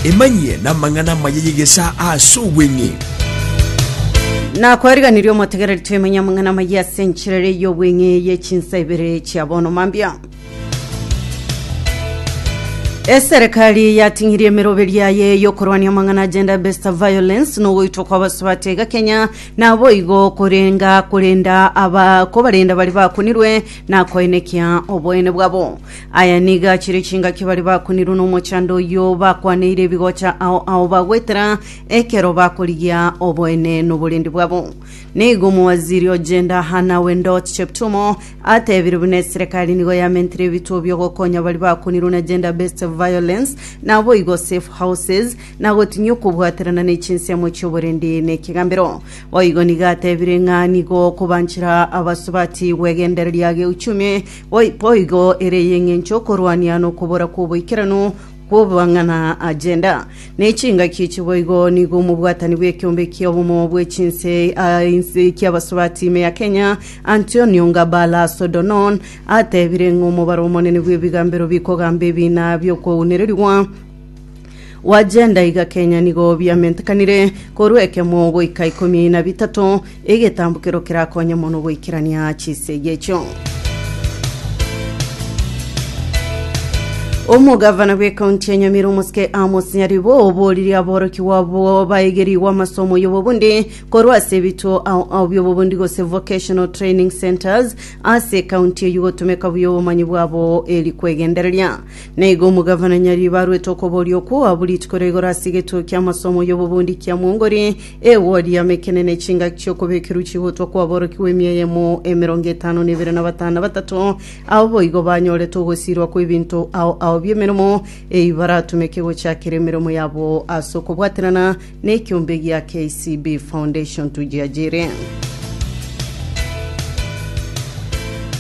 Emanyie namang'ana amaya y'egesaa ase obweng'e. Na kwariganirie omotegereri twemanya amang'ana amaya ase enchera ere y'obweng'e ye chinsa ibere chia bono mambia. Eserekari yating'irie emeroberi yaye y'okorwania amang'ana gender based violence na ogoitwa kwa abasubati iga Kenya naboigo korenga korenda aba kobarenda bari bakunirwe na koenekia oboene bwabo Aya nigo achire chingaki baria bakunirwe nomochando oyio, bakwaneire ebigocha ao ao bagwetera, ekero bakorigia oboene noborendi bwabo. Nigo omowaziri o Gender Hannah Wendot Cheptumo atebire buna eserekari nigo yamentire ebituo biogokonya baria bakunirwe na gender based violence naboigo safe houses na gotinyia okobwaterana ne chinsemo chioborendi ne ekegambero. Boigo nigo atebire ng'a nigo okobanchera abasubati gwegendereria geuchumi Boigo ere y'engencho y'okorwania nokobora kw'oboikeranu kw'amang'ana a gender, ne chingaki echi boigo nigo omobwatani bw'ekiombe ki'obomo bwe chinse ki'abasubati ime ya Kenya, Antonio Ngabala Sodonon, atebire ng'a omobaro omonene bw'ebigambero bikogamba ebina bi'okwaunererigwa, Gwachenda iga Kenya nigo biamentekanire korwa ekemo goika ikomi na bitato, egetambokero kerakonye mono goikerania chisegi echio. Omogavana bw'ekaunti ya Nyamira omosike Amos Nyaribo obooririe aborokigwa abo baegerigwe amasomo y'obobundi korwa ase ebituo ao ao by'obobundi gose vocational training centres ase ekaunti eyio gotomeka buya obomanyi bwabo eri kwegendereria Na igo omogavana nyar'iriba arwete okoboria okwo oabwo rituko ria igoro ase egetuo ki'amasomo y'obobundi kia Mwongori, ewodi yamo ekenene, chingaki chi'okobekerwa chigotwa kwaborokigwa emia eyemo emerongo etano na ebere na batano na batato, abwo boigo banyorete ogosiirwa kw'ebinto ao ao bi'emeremo, eyio baratumeke gochakera emeremo yabo ase okobwaterana Nekiombe gia KCB Foundation tujiajirie.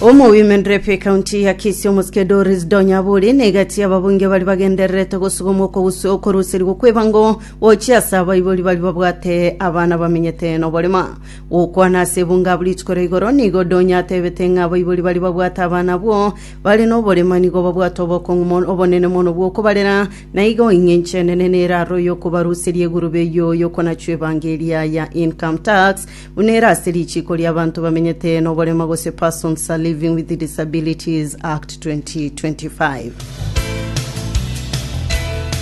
Omo Women Rep ekaunti ya Kisii omosike Doris Donyaburi na egati y'ababunge bari bagendererete gosuguma okoruserigwa kw'ebango gochia ase abaibori bari babwate abana bamenyete n'oborema gokwana ase ebunge abwo rituko ria igoro nigo Donya atebete ng'a abaibori bari babwate abana abwo bare n'oborema nigo babwate obokong'u obonene mono bw'okobarera Na igo ing'encho enene nere aroro y'okobaruseria egurube eyio y'okonachwa ebango eria ya income tax, buna ere ase richiiko ri'abanto bamenyete noborema gose Persons Living with Disabilities Act 2025.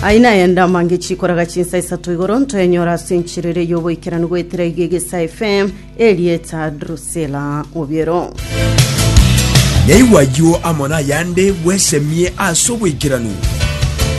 Aye naye ndamange chikoraga chinsa isato igoro ntoenyore ase enchera eria y'oboikeranu goetera iga egesa FM, erieta Drusilla Obiero. Naigwa ayio amo nayande bwesemie ase oboikeranu.